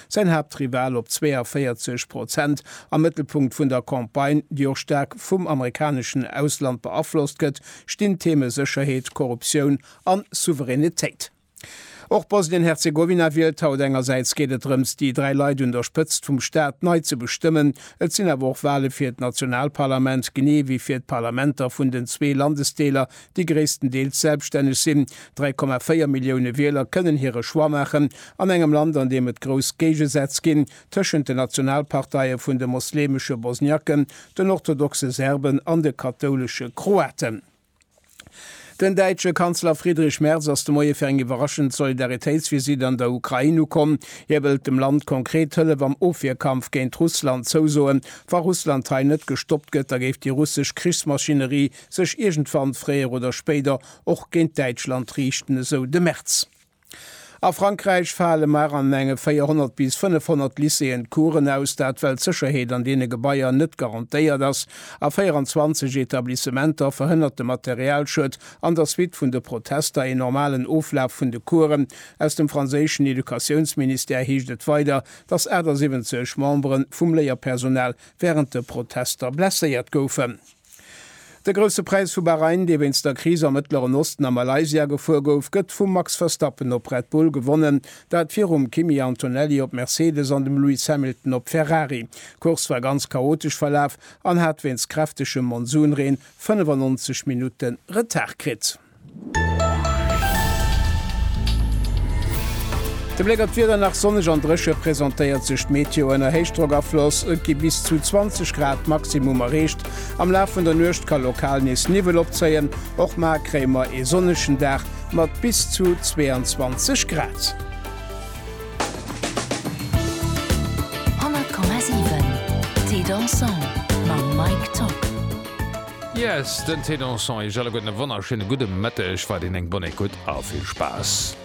Säin Haaptrival op 42 Prozent, am Mëttelpunkt vun der Campagne, déi och staark vum amerikaneschen Ausland beaflosst gëtt, stinn d'Theme Sécherheet, Korruptioun an Souveränitéit. Och Bosnien-Herzegowina wielt haut. Engersäits geet et drëms, déi dräi Leit un der Spëtzt vum Staat nei ze bestëmmen. Et sinn awer och Wale fir d'Nationalparlament, genee wéi fir d'Parlamenter vun den zwee Landesdeeler, déi gréisstendeels selbstänneg sinn. 3,4 Millioune Wieler kënnen hire Choix maachen an engem Land, an deem et grouss Géigesätz ginn tëschent den Nationalparteie vun de mosleemesche Bosniaken, den orthodoxe Serben an de kathoulesche Kroaten. Den däitsche Kanzler Friedrich Merz ass de Moie fir eng iwwerraschend Solidaritéitsvisitt an der Ukrain ukomm. Hie wëllt dem Land konkret Hëllef am Ofwierkampf géint Russland zousoen. Wa Russland hei net gestoppt gëtt, da géif déi russesch Krichsmaschinerie sech iergendwann fréier oder spéider och géint Däitschland riichten, esou de Merz. A Frankräich fale mar an enge 400 bis 500 Lycéeën d'Coursen aus, dat well d'Sécherheet an deene Gebaier net garantéiert ass. A 24 Etablissementer verhënnert de Materialschued an der Suite vun de Protester een normalen Oflaf vun de Coursen. Aus dem franséischen Educatiounsministère heescht et weider, datt 78 Membere vum Léierpersonal wärend de Protester blesséiert goufen. De Grousse Präis vu Bahrain, dee wéinst der Kris am Mëttleren Osten a Malaysia gefuer gouf, gëtt vum Max Verstappen op Red Bull gewonnen, dat virum Kimi Antonelli op Mercedes an dem Lewis Hamilton op Ferrari. D'Course war ganz chaotesch verlaf an hat wéinst kräftegem Monsunreen 95 Minutte Retard kritt. De Bléck op d'Wieder, Nach sonneg an dréche presentéiert sech d'Meteo ënner Héichdrockafloss. Et gi bis zu 20 Grad Maximum erreecht. Am Laf vun der Nuecht ka lokal nees Niwwel opzéien, och mar kréie mer ee sonnegen Dag mat bis zu 22 Grad. Yes, den Ténor Son, iech alleguerten e wonnerschéine gudde Mëtteg, weiderhin eng bonne écoute a vill Spaass!